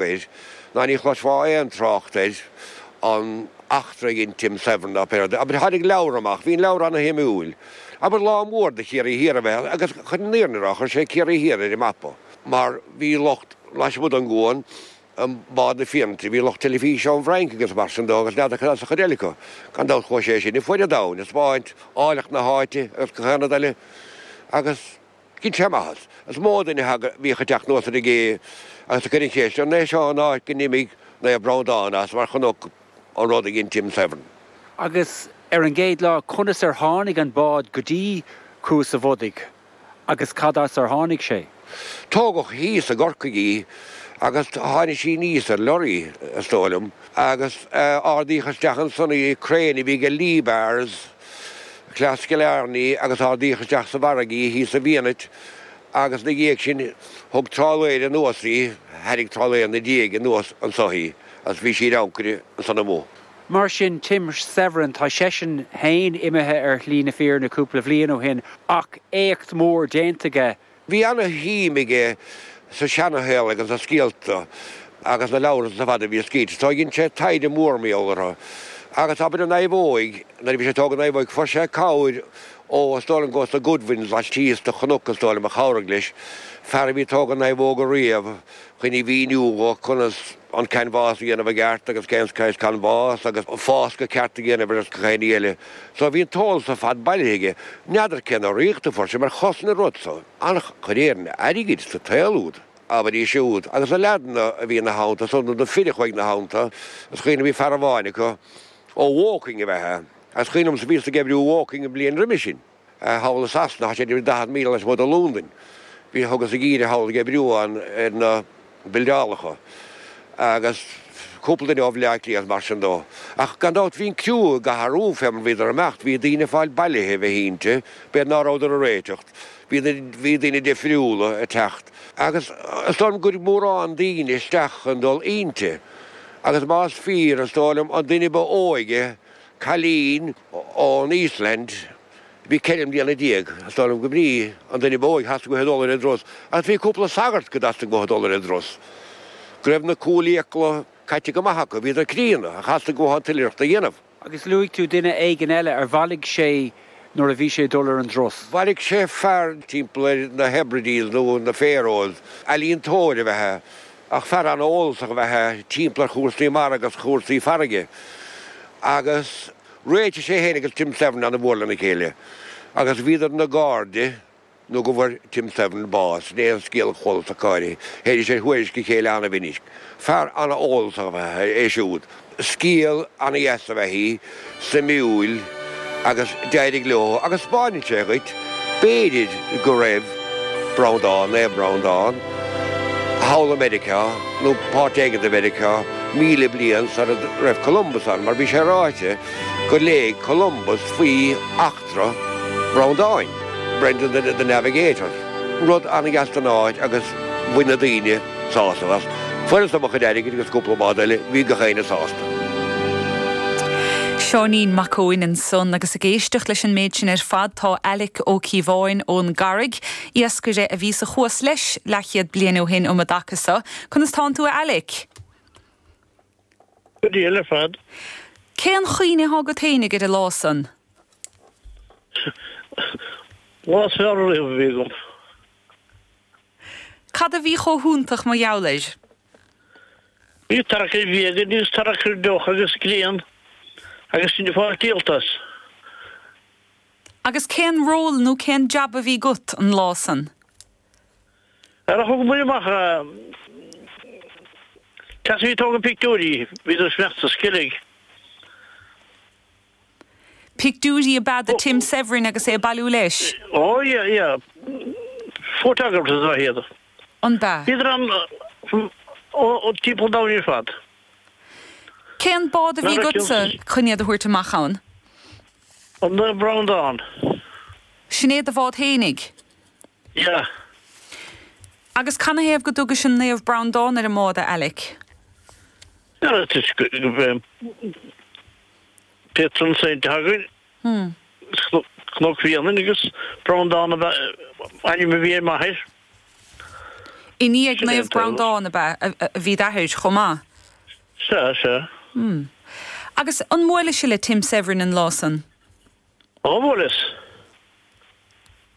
air, ná ní chloisfeá aon trácht air, an eachtra a dhein Tim Severin dá phéire de, abair. Tháinig leabhar amach, bhí an leabhar ana-shuimiúil, abair, lá mór do Chiarraí Thiar ab ea é, agus chun an fhírinne a rá, chuir sé Ciarraí Thiar ar an mapa, mar bhí lucht, lasmuigh den gcuan, i mbád na fírinne, bhí lucht teilifíse ón bhFrainc agus mar sin dó agus n'fheadar cad as an chuid eile acu. Gan dabht chuaigh sé sin ar fuaid an domhain, ag taispeáint áilleacht na háite agus gach aon rud eile agus, Dhein sé maitheas. Is mó duine a thagadh, a bhíodh ag teacht anuas ar an gcé agus ag cur na ceiste, an é seo an áit go n-imigh Naomh Breandán as mar chonaic an rud a dhein Tim Severin. Agus ar an gcéad lá, conas ar tháinig an bád go dtí Cuas a' Bhodaigh agus cad as ar tháinig sé? Tógadh thíos i gCorcaigh í agus tháinig sí aníos ar lorraí, is dóigh liom, agus ardaíodh isteach ansan í, crane a bhí ag Liebherr's, as Cill Airne agus ardaíodh isteach sa bhfarraige í thíos i bhFianait agus ina dhiaidh sin thug trálaeir anuas í, thairrig trálaeir ina diaidh anuas anso í agus bhí sí ar ancaire ansan amuigh. Mar sin, Tim Severin, tá seisean féin imithe ar shlí na fírinne cúpla bhliain ó shin ach éacht mór déanta aige. Bhí ana-shuim aige sa seanashaol agus sna scéalta agus na leabhra san ar fad a bhí scríte. So dhein sé taighde mór maol orthu. Agus abair an naomhóig, nuair a bhí sé ag tógaint an naomhóig fuair sé cabhair ó, is dóigh liom go was the Goodwins laistíos de chnoc is dóigh liom a chabhraigh leis, fear a bhí ag tógaint naomhóga riamh, chun a mhíniú dho conas. an canbhás a dhéanamh i gceart agus cén saghas canbhás agus fáscadh ceart a dhéanamh air agus gach aon ní eile. So bhí an t-eolas ar fad bailithe aige. N'fheadar cén urraíocht a fuair sé mar chosain an rud so an-chuid, déarfainn, airgid sa tsaol úd, abair, ansúd, agus na leaideanna a bhí ina theannta so nó na fir a chuaigh ina theannta, is cuimhin liom bhí fear amháin acu ó Woking ab ea é, agus is cuimhin liom bhíos ag oibriú i Woking an bhliain roimhe sin. thall i Sasana, thá sé ag dul daichead míle lasmuigh de Lúndain. Bhí, thugas geimhreadh thall ag oibriú ann ar na bildeálacha agus cúpla duine ó Bhleá Cliath is mar sin dó. Ach gan dabht bhí an criú ag athrú fé mar bhíodar ag imeacht, bhí daoine ag fáil bailithe de bheith inti, b'fhéidir ná rabhadar ag réiteacht, bhí na, bhí daoine difriúla ag teacht. Agus is dóigh liom gur mórán daoine isteach chun dul inti. Agus más fíor, is dóigh liom an duine ba óige, cailín, ón Íoslainn. Bhí ceithre mbliana déag, is dóigh liom go mb'í, an duine ba óige a theastaigh uathu dul ar an dturas, agus bhí cúpla sagart go dteastaigh uathu dul ar an dturas. Go raibh na cúlfhiacla caite go maith acu, bhíodar críonna, ach theastaigh uathu an t-oilithreacht a dhéanamh. Agus luaigh tú duine éigin eile ar bhailigh sé nuair a bhí sé ag dul ar an dturas. Bhailigh sé fear timpeall ar na Hebrides nó na Faeroes, ealaíontóir ab ea é, ach fear an-eolasach ab ea é timpeall ar chúrsaí mara agus chúrsaí farraige, agus réitigh sé fhéin agus Tim Severin an-mhór lena chéile, agus bhíodar ina gcairde nó go bhfuair Tim Severin bás, in aon scéal eolas ach go háirithe, théidís ar thuairisc a chéile an-mhinic. Fear an-eolasach ab ea é siúd. scéal an-deas ab ea é, suimiúil, agus d'éirigh leo agus spáineann sé dhuit, b'fhéidir go raibh Breandán, Naomh Breandán, thall i Meiriceá nó páirt éigin de Mheiriceá míle bliain sara raibh Columbus ann mar bhí sé ráite gur léigh Columbus faoi each tra Bhreandáin, Brendan the the Navigator, rud an-dheas don áit agus bhain na daoine sásamh as. Fuaireas-sa mo chuid airgid agus cúpla bád eile, bhí gach éinne sásta. Seáinín Mac Eoin ansan agus ag éisteacht leis an méid sin ar fad tá Alec Ó Cíobháin ón gCarraig, iascaire a bhí sa Chuas leis leathchéad bliain ó shin um an dtaca so. Conas tánn tú a Alec? Go diail ar fad. Cén chuimhne athá agat fhéinig ar an lá san? Lá is fearr riamh a bhí agam. Cad a bhí chomh hiontach mar gheall air? Bhí tarrac ar bhia againn agus tarrac ar dheoch agus grian agus sinn ag fáil díolta as. Agus cén ról nó cén jab a bhí agat an lá san? Á, thugamair amach chaps a bhí ag tógáil pictiúirí, bhíodar ag imeacht thar Sceilg. Pictiúirí ab ea do Tim Severin agus é ag bailiú leis. Ó yeah yeah photographers ab ea iad. Ab ea? Bhíodar ann ó timpeall domhain ar fad. Cén bád a bhí agatsa chun iad a thabhairt amach ann? An Naomh Breandán. Sin é do bhád fhéinig? Yeah. Agus canathaobh go dtugais an Naomh Breandán ar an mbád, a Alec? Tá patron saint againn, Cnoc Bhréanainn agus Breandán ab ea ainm a bhí ar m'athair. I ndiaidh Naomh Breandán ab ea a bhí d'athair chomh maith? Sea, sea. Agus an mbuailis-se le Tim Severin an lá san? Ó, bhuaileas.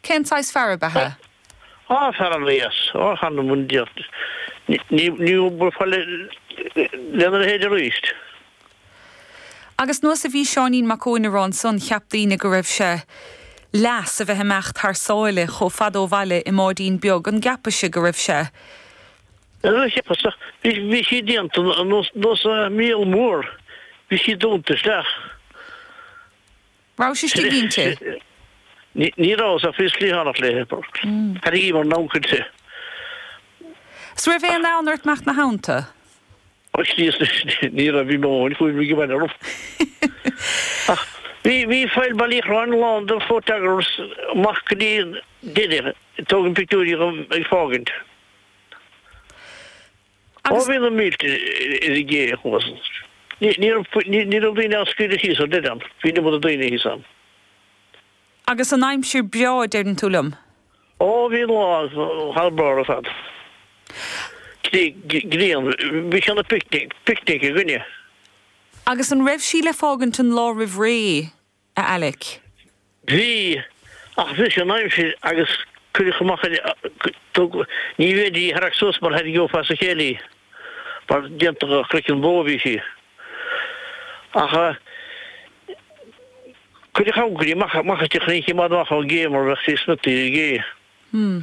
Cén saghas fear ab ea é? Á, fear an-deas. Ó, chan an bhain Dia. Ní, ní bhuailfeá le, lena leithéid arís. Agus nós a bhí Seáinín Mac Eoin á rá ansan cheap daoine go raibh sé leath as a bheith imeacht thar sáile chomh fada ó bhaile i mbáidín beag an gceapais-se go raibh sé. Níor cheapas a, bhí, bhí sí déanta nós, nós an míol mór. Bhí sí dúnta isteach. raibh sé istigh inti. Ní raibh, is ea, bhíos cliathánach léi. Thairrigíomar namhaid cuillte. 'S raibh aon fhonn ort imeacht ina theannta. a shníos leis? Ní raibh, bhí mo dhóthain cúraim ag baile orm. Ach bhí Faill Bhaile Uí Chorráin lán de photographers amach go dtí deireadh, ag tógaint pictiúirí dhom ag fágaint. Ó, bhí na mílte ar an gcé thuas, ní raibh daoine á scaoileadh síos ar deireadh. Bhí an iomad daoine thíos ann. Agus an aimsir breá, deireann tú liom? Ó, bhí an lá thar barr ar fad. Grian, bhí sé ina picnic againne. Agus an raibh sí le fágaint an lá roimh ré? a Alec. Bhí, ach bhris an aimsir agus cuireadh amach é. Níorbh fhéidir í a tharrac suas mar thairrigeofá as a chéile í, mar déanta de chroiceann bó a bhí sí. Ach cuireadh ancairí amach aisti a choinneodh an bád amach ón gcé mar bheadh sí smiota ar an gcé. Hmm.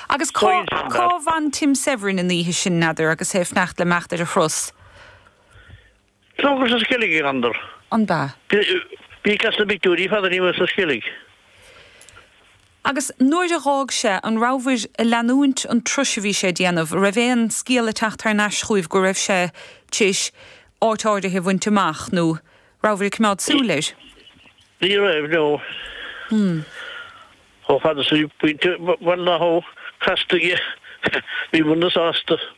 Agus cá bhfan Tim Severin an oíche sin, n'fheadar, agus é ag fanacht le imeacht ar a thuras? Tógadh sa Sceilg í Randall. an ba. Bhíodh as na bpictiúirí fad a bhí muid sa Sceilg. Agus nuair a dh'fhág sé, an rabhabhair a' leanúint an turas a bhí sé a' déanamh, an raibh aon scéala a' teacht thar n-ais chúibh go raibh sé t'réis áit áirithe a bhuint amach, nó rabhabhair a' coimeád súil air? Ní raibh, no. Chomh fada 's a bhí Pointe Bhaile na hAbha casta aige. Bhíomarna sásta.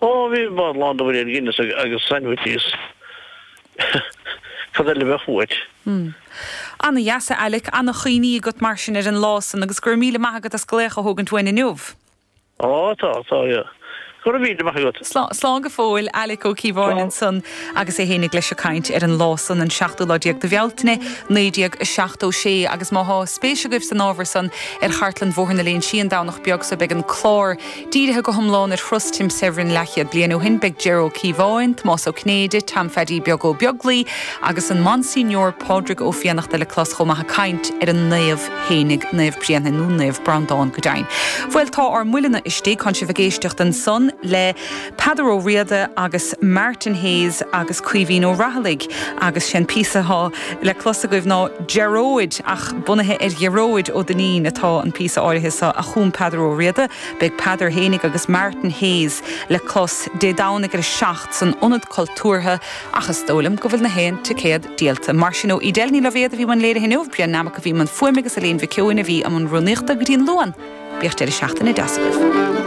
Ó, bhí an bád lán de bhuidéil Guinness agus sandwiches. Cad eile a bheadh uait? Ana-dheas, a Alec. Ana-chuimhní agat, mar sin, ar an lá san agus go raibh míle maith agat as glaoch a thógaint uainn inniu. Ó, tá, tá. Go raibh míle maith agat. Slán go fóill, Alec Ó Cíobháin ansan agus é fhéinig leis ag caint ar an lá san, an seachtú lá déag de Bhealtaine, 1976. Agus má thá spéis agaibh san ábhar san ar chartlann Bhóthar na Léinsí an Domhnach beag so beidh an clár, Dírithe go hiomlán ar thuras Tim Severin leathchéad bliain ó shin, beidh Ger Ó Cíobháin, Tomás Ó Cinnéide, Tom Pheaidí Beag Ó Beaglaoi agus an Monsignor Pádraig Ó Fiannachta le clos chomh maith ag caint ar an Naomh fhéinig, Naomh Bréanainn nó Naomh Breandán, go deimhin. Bhuel, tá ár mbuilleanna istigh, tánn sibh ag éisteacht ansan le. Peadar Ó Riada agus Martin Hayes agus Caoimhín Ó Raghallaigh agus sé an píosa atá le clos agaibh ná Gearóid ach bunaithe ar Ghearóid Ó Duinnín atá an píosa áirithe seo a chum Peadar Ó Riada. Beidh Peadar fhéinig agus Martin Hayes le clos Dé Domhnaigh ar a seacht san Ionad Cultúrtha ach is dóigh liom go bhfuil na haon ticéad díolta. Mar sin, ó, Edel Ní Loibhéad a bhí i mbun léirithe inniu, Brian Nammock a bhí i mbun fuaime agus Eilín Mhic Eoin a bhí i mbun rúnaíochta. Go dtí an Luan, bíodh deireadh seachtaine deas agaibh.